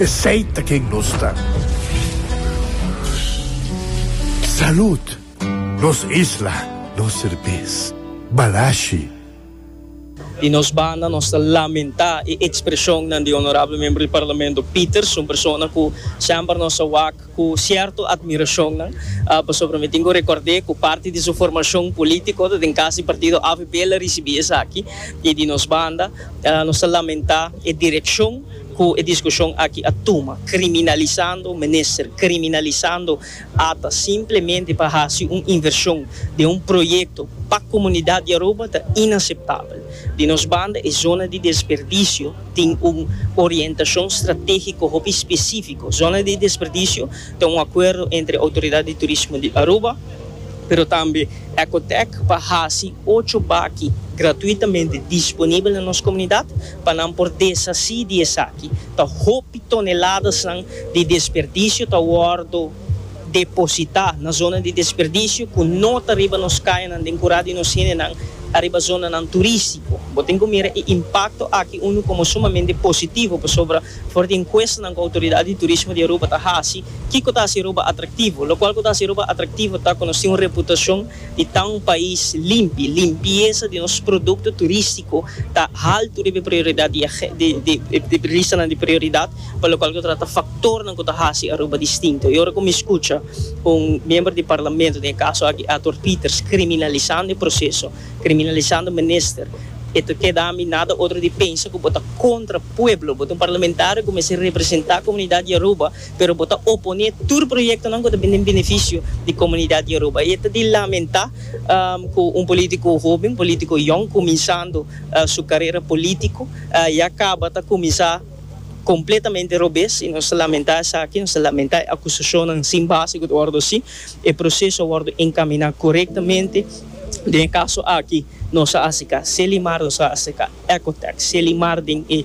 Esey ta ken nos ta. Salud! Nos isla, nos serbes, Balashi. Di nos banda nos ta lamentá e ekspreshonnan di Honorable Membro di Parlamento Peters, un persona ku semper nos a wak ku sierto admirashonnan, pasobra mi tin ku rekòrd'é ku parti di su formashon polítiko ta den kas di partido avp el a risibí esaki, i di nos banda nos ta lamentá e direkshon. Cu e discusion aki a tuma, criminalisando minister, criminalisando ata, simplemente pa haci un inversion den un proyecto pa comunidad di Aruba ta inaceptabel. Di nos banda e zona di desperdicio tin un orientacion strategico hopi specifico. Zona di desperdicio ta un acuerdo entre Autoridad di Turismo di Aruba, pero tambe Ecotec pa haci ocho baki gratuitamente disponibel na nos comunidad, Pa nan por deshací di esaki, ta hopi toneladasnan di desperdisio ta wòrdu depositá na zona di desperdisio ku no ta riba nos kayanan den kurá di nos hendenan ariba zonanan turístiko. Bo tin ku mira e impakto aki unu komo sumamente positivo pasobra for di enkuestanan ku Outoridat di Turismo di Aruba ta hasi, kiko ta hasi Aruba atraktivo? Lokual ku ta hasi Aruba atraktivo ta ku nos tin un reputashon di ta un pais limpi. Limpiesa di nos produkto turistiko ta haltu riba e prioridat di e ristanan di prioridat pa lokual ku ta trata faktornan ku ta hasi Aruba distinto. E ora ku mi skucha un miembro di parlamento, den e kaso aki Arthur Peters, kriminalisando e proseso, kriminalisando minister, e ta keda mi nada otro di pensa ku bo ta kontra pueblo. Bo ta un parlamentario ku mester representá komunidat di Aruba. pero bo ta oponé tur proyektonan ku ta bin den benefisio di komunidat di Aruba. I e ta di lamentá ku un polítiko hoben, polítiko yòn, kuminsando su karera polítiko, ya kaba ta kuminsá kompletamente robes. I nos ta lamentá esaki, nos ta lamentá e akusashonnan sin base ku ta wòrdu hasi. E proseso a wòrdu enkaminá korektamente. Den e kaso aki nos a aseká Selimar, nos a aseká Ecotex, Selimar den e.